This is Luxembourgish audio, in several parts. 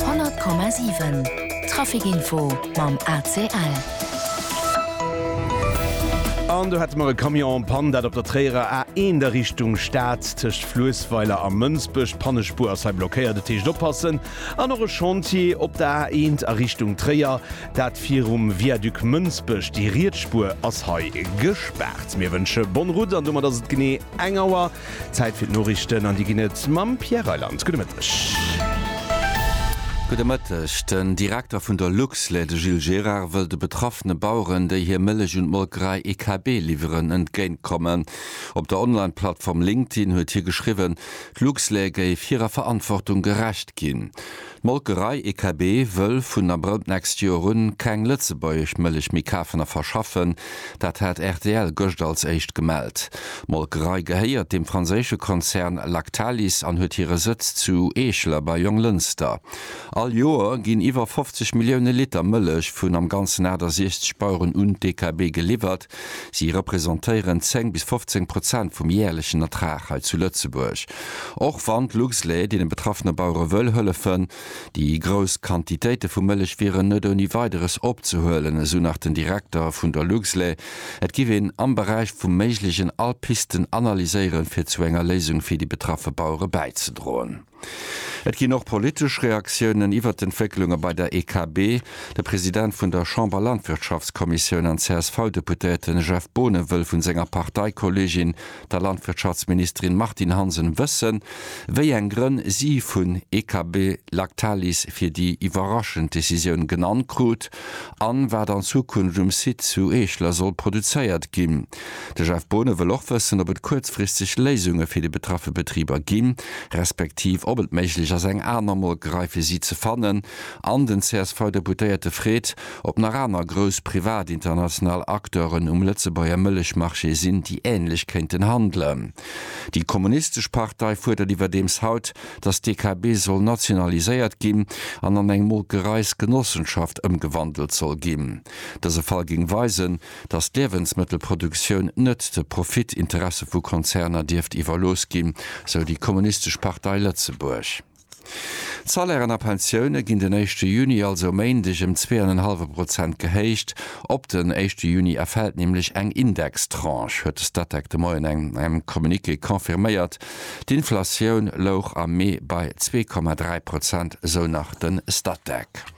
100,7 Trafic Info mam ACL. An do hate mer e Camion en Panne, dat op der Tréierer A 1 a Richtung Stad tëscht Fluessweiler a Mënsbech. D'Pannespuer ass hei blockéiert, dat heescht oppassen. An och e Chantier op der A 1 a Richtung Tréier, dat virum Viaduc Mënsbech. Déi riets Spuer ass hei gespaart. Mir wënsche bonne route an domat ass et genee eng Auer. Zäit fir d'Noriichten an déi ginn et mam Pierre Reyland. Gudde Mëtteg. Gudde Mëtteg. Den Direkter vun der Luxlait, de Gilles Gérard, wëll de betraffene Baueren, déi hir Mëllech un d'Molkerei EKB liwweren, entgéint kommen. Op der Online-Plattform LinkedIn huet hie geschriwwen, d'Luxlait géif hirer Verantwortung gerecht ginn. D'Molkerei EKB wëll vun Abrëll d'nächst Joer un keng lëtzebuergesch Mëllech méi kafen a verschaffen. Dat hat rtl gëscht als éischt gemellt. D'Molkerei gehéiert dem franséische Konzern Lactalis an huet hire Sëtz zu Eeschler bei Jonglënster. All Joer ginn iwwer 50 Millioune Liter Mëllech vun am Ganzen 68 Baueren un d'EKB geliwwert, Si representéieren 10 bis 15 Prozent vum jäerlechen Ertrag hei zu Lëtzebuerg. Och wann d'Luxlait deene betraffene Bauere wëll hëllefen, déi grouss Quantitéite vu Mëllech wieren net ouni Weideres opzehuelen, esou nach den Direkter vun der Luxlait. Et giff een am Beräich vum Méiglegen all Pisten analyséieren, fir zu enger Léisung fir déi betraffe Bauere bäizedroen. Et ginn och politesch Reaktiounen iwwert d'Entwécklunge bei der EKB. De President vun der Chamber-Landwirtschaftskommissioun an CSV-Deputéierte Jeff Boonen wëll vu senger Parteikolleegin, der Landwirtschaftsministerin Martine Hansen wëssen, wéi eng Grënn si vun EKB Lactalis fir déi iwwerraschend Decisioun genannt krut an wat an Zukunft um Site zu Eeschler soll produzéiert ginn. De Jeff Boonen wëll och wëssen, ob et kuerzfristeg Léisunge fir déi betraffe Betriber ginn, respektiv ob et méiglech ass eng aner Molkerei fir si ze fannen. An den CSV-Deputéierte freet, ob nach aner grouss privat international Acteuren um Lëtzebuerger Mëllechmarché sinn, déi änlech kéinten handelen. Déi kommunistesch Partei fuerdert iwwerdeems haut, datt d'DKB soll nationaliséiert ginn an an eng Molkereisgenossenschaft ëmgewandelt soll ginn. Dëse Fall géing weisen, datt d'Liewensmëttelproduktioun net de Profitinteresse vu Konzerner dierft iwwerlooss ginn, sou déi Kommunistesch Partei Lëtzebuerg. D'Salairen a Pensioune ginn den éischte Juni, also e Méindeg, ëm zwee an en hallwe Prozent gehéicht. Op den éischte Juni erfält nämlech eng Indextranche, huet de Statec de Moien an engem Communiqué confirméiert. D'Inflatioun louch am Mee bei zwee Komma dräi Prozent, sou nach de Statec.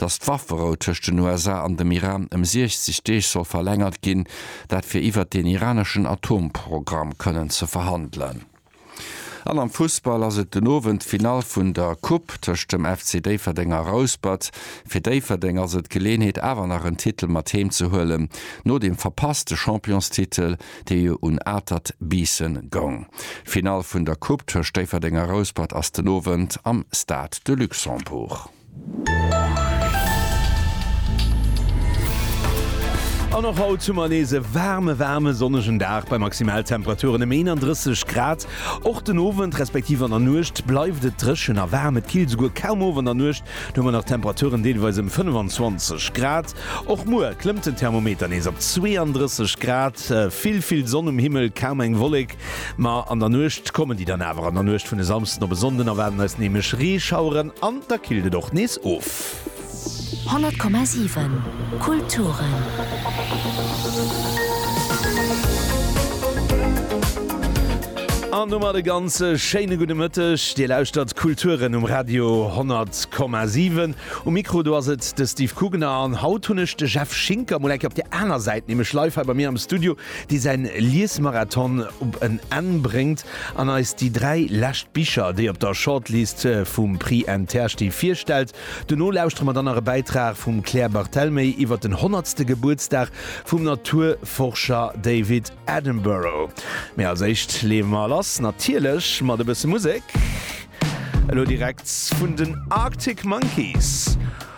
datt d'Wafferou tëscht den USA an dem Iran ëm 60 Deeg soll verlängert ginn, dat fir iwwert deen iraneschen Atomprogramm kënnen ze verhandelen. An am Fussball ass et den Owend d'Finall vun der Coupe tëscht dem FC Déifferdeng a Rouspert. Fir Déifferdeng ass et d'Geleenheet awer nach en Titel mat heem ze huelen, no dem verpasste Championstitel, dee jo un Atert Biissen goung. D'Finall vun der Coupe tëscht Déifferdeng a Rouspert ass den Owend am Stade de Luxembourg. An och haut hu mer nees e waarme, waarme sonnegen Dag bei Maximaltemperaturen ëm 31 Grad. Och den Owend, respektiv an der Nuecht bleift et dréchen a waarm. Et killt esouguer kaum of an der Nuecht, do hu mer nach Temperaturen deelweis ëm 25 Grad. Och muer klëmmt den Thermometer nees op 32 Grad. Vill, vill Sonn um Himmel, kaum eng Wollek. Ma an der Nuecht kommen déi dann awer, an der Nuecht vun e Samsden op e Sonnden erwaarden eis nämlech Reeschaueren an da killt et och nees of. 100,7 Kulturen. An domat e ganz schéine gudde Mëtteg. Dir lauschtert Kulturen um Radio 100,7. Um Mikro do ass et de Steve Kugener an haut hunn ech de Jeff Schinker mol eng Kéier op der aner Säit, nämlech live hei bei mir am Studio. dee säin Liesmarathon op en Enn bréngt an eis déi 3 lescht Bicher, déi op der Shortlist vum Prix Inter sti, virstellt. Dono lauschtere mer dann nach e Bäitrag vum Claire Barthelmé iwwer den honnertste Gebuertsdag vum Naturforscher David Attenborough. Mee als éischt leeë mer lass, natierlech mat e bësse Musek. Elo direkt vun den Arctic Monkeys.